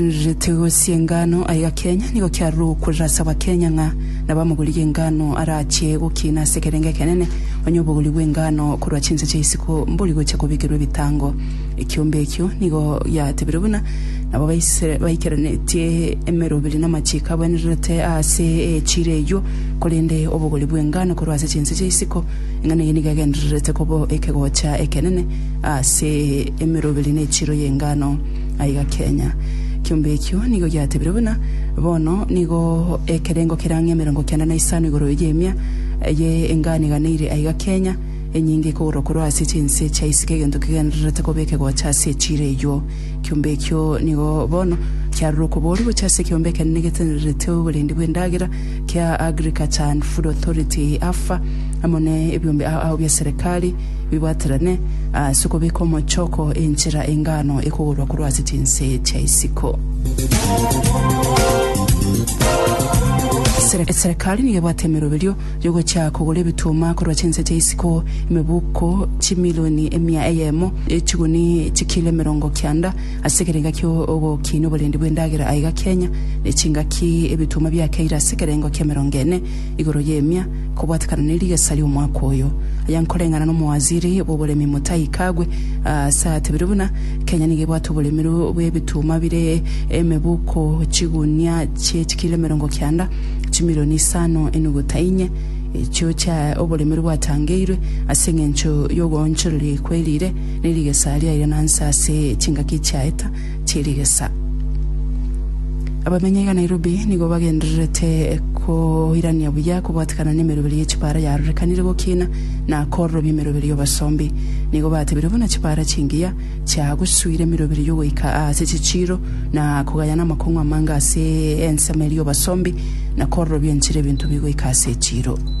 Getigo chi'engano aiga Kenya nigo kiarure gokurera ase Abakenya ng'a nabo amagori y'engano arache gokina ase ekerengo ekenene onye obogori bw'engano korwa chinse chia isiko mbori gocha kobikerwa ebitango. Ekiombe ekio nigo giatebire buna nabo baise baikeranetie emeroberi namachiko abwenererete ase echiro eyio korende obogori bw'engano korwa ase chinse chia isiko eng'ana eye nigo egendererete kobo ekegocha ekenene ase emeroberi na echiro y'engano. Aiga kenya. Kiombe ekio nigo giatebirwe buna bono nigo ekerengo kere ang'e emerongo kenda na isano igoro y'emia eye enganiganeire aiga kenya, enyinge ekogorwa korwa ase chinse chia isiko egento kegendererete kobeke gocha ase echiro eyuo. Kiombe ekio nigo bono kiarorwa okoboria gochia ase ekiombe ekenene getenererete oborendi bw'endagera kia Agriculture and Food Authority, AFA, amo ne ebiombe ao ao bia serikali, bibwaterane ase okobeka omochoko enchera engano ekogorwa korwa ase chinse chia isiko. Sere- Serikali nigo ebwate emeroberio yogochia kogora ebituma korwa chinse chia isiko emebuko chimilioni emia eyemo echiguni chikilo emerongo kianda ase ekerenga kia ogokinia oborendi bw'endagera aiga Kenya ne chingaki ebituma biakeire ase ekerengo kia emerongo ene igoro y'emia ekobwatekana ne rigesa ri'omwaka oyo. Aya nkoreng'ana n'omowaziri bw'oboremi Mutahi Kagwe ase atebire buna Kenya nigo ebwate oboremi bw'ebituma bire emebuko chigunia chie chikilo emerongo kianda chimilioni isano enuguta inye echio chia oboremi bwatangeirwe ase eng'encho y'ogoonchoreria ekwe erire ne rigesa riaire nonsi ase chingaki chiaeta chirigesa. Abamenyai ga Nairobi nigo bagendererete koirania buya kobwatikana nemeroberi ye chipara yarorekanire gokina na kororobia emeroberi y'obosombi. Nigo batebire buna chipara chingiya chiagosuire emeroberi yogoika aase chichiiro na kogayana amakong'u amange ase ensemo eria y'obosombi na kororobia enchera ebinto bigoika ase echiiro.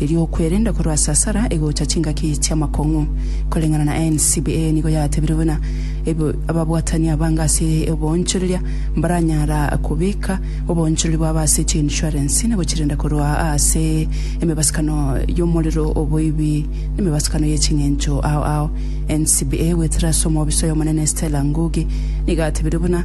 erio okwerenda korwa ase asara egocha chingaki chi'amakong'u koreng'ana na NCBA nigo yatebire buna ebe ababwatani abange ase oboonchoreria mbaranyara kobeka oboonchorori bwabo ase chiinshuarensi na gochirenda korwa ase emebasukano y'omorero, oboibi, na emebasukano ye ching'encho ao ao. NCBA gwetera ase omobisa oy'Omonene Stella Ngugi nigo atebire buna.